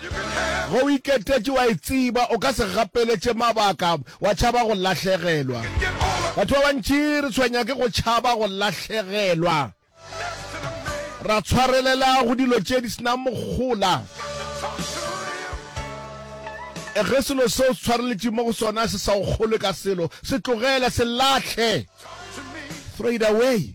Ge o iketetše, o a e tseba, o ka se gapeletše mabaka, wa tšhaba go lahlegelwa. Batho ba bantši re tshwenya ke go tšhaba go lahlegelwa. Ra tshwarelela go dilo tše di se na mohola. Ge selo seo tshwareletše mo go sona se sa o kgolwe ka selo, se tlogele, se lahle, throw it away.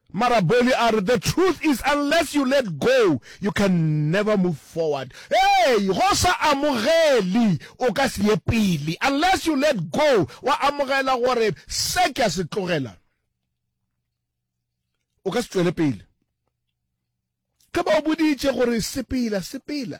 Maraboli a re, The truth is unless you let go, you can never move forward. Hei! Ge o sa amogeli, o ka se ye pele. Unless you let go, wa amogela gore se ke a se tlogela, o ka se tšwele pele. Ge ba o boditše gore sepela, sepela.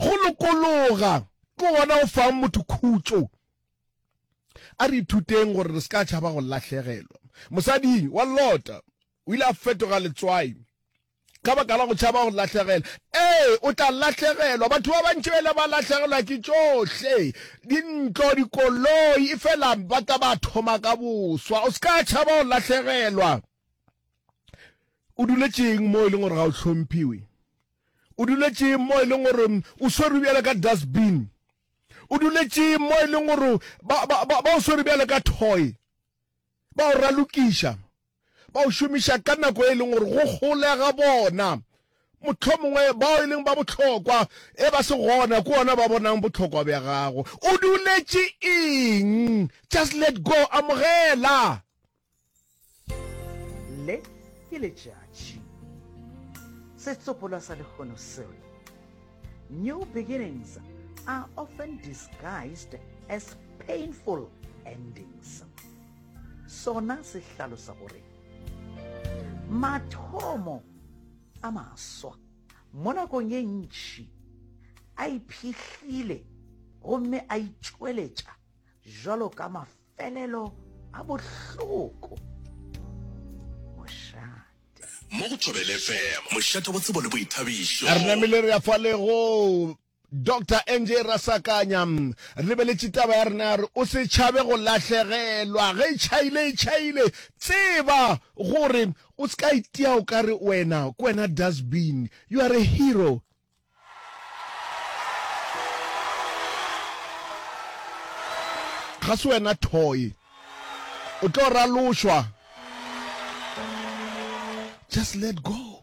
Go lokologa ke gona go fang motho khutšo. A re ithuteng gore re se ka tšhaba go lahlegelwa. Mosadi wa Lota o ile a fetoga letswai ka baka la go tšhaba go lahlegelwa. Ee, o tla lahlegelwa. Batho ba bantši ba ile ba lahlegelwa ke tšohle, dintlo, dikoloi, efela ba tla ba thoma ka boswa. O se ka tšhaba go lahlegelwa. o duletšeng mo e leng gore ga o tlhomphiwe o duletšeng mo e leng gore o swere bjale ka dustbin o duletšeng mo e leng gore ba o swere bjale ka toy ba o ralokiša ba o šomiša ka nako e leng gore go golega bona motlho mongwe bao e leng ba botlhokwa e ba se gona ke ona ba bonang botlhokwa bja gago o duletše eng just let go amogela le ke letšatši setsopolwa sa lehono seo new beginnings are often disguised as painful endings sona se hlalosa gore mathomo a maswa mo nakong e ntšhi a iphihlile gomme a itšweletša jalo ka Pelelo a bohloko. Mošate. Mo go Thobele FM, mošate wa tsebo le boithabišo. Re namile re ya fa lego Doctor NJ Rasakanya re beletše taba ya rena re o se tšhabe go lahlegelwa ge e tšhaile e tšhaile tseba gore o se ka itia o ka re wena ke wena dustbin you are a hero Ga se wena toy. O tlo ralošwa. Just let go.